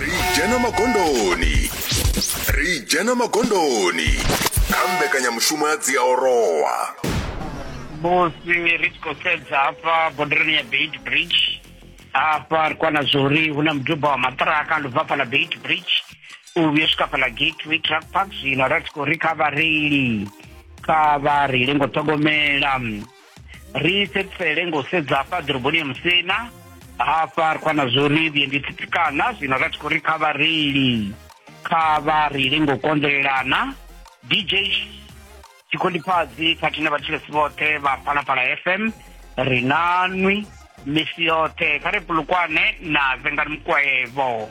ri dzhena magondoni ri dzhena magondoni kha mbekanyamushumo ya dziaorowa musi ri tshi khou sedza hafha bodereni ya beit bridge hafha ri kwana zwori hu na muduba wa maṱiraka ndi bva hafha na beit bridge u vhuya swika hafha na gateway truck park zwino ra tshi khou ri kha vhareili kha vha reile ngo ṱhogomela ri fhedzisele ngo sedza hafha ḓoroboni ya musina hafha ri khou na zwo ri vhuendi tsitsikana zwino ra tshi khou ri kha vhareili kha vha reile ngo konḓelelana dj tshikhondipfadzi khathihi na vhatshilesi vhoṱhe vha phalaphala fm ri na nwi misi yoṱhe kha ri pulukwane na vengani mukwaevo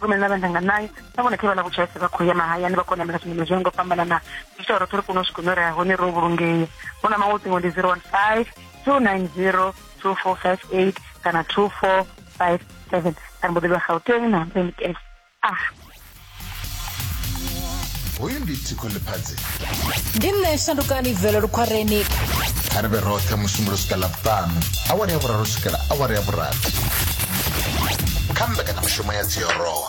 rume na vhana nga nayo na vhone khe vha ḽa vhutshaise vha khou ya mahayani vha konamela zwimela zwo ngo fhambanana zwi tsha roṱhe ri kone u swika hune ra ya hone ro vhulungea hu na maṅwe ṱingo ndi 015 290 2458 kana 2457 kana mboḓi vha gauteng na mbenikes ah hoyu ndi thikho ḽiphadzi ndi nṋe shandukani vele lukhwareni kha ri vhe roṱhe musumbulo swika ḽavhuṱanu awara ya vhuraru swikela awara ya vhurathi kha mbekanyamushumo ya dziorowa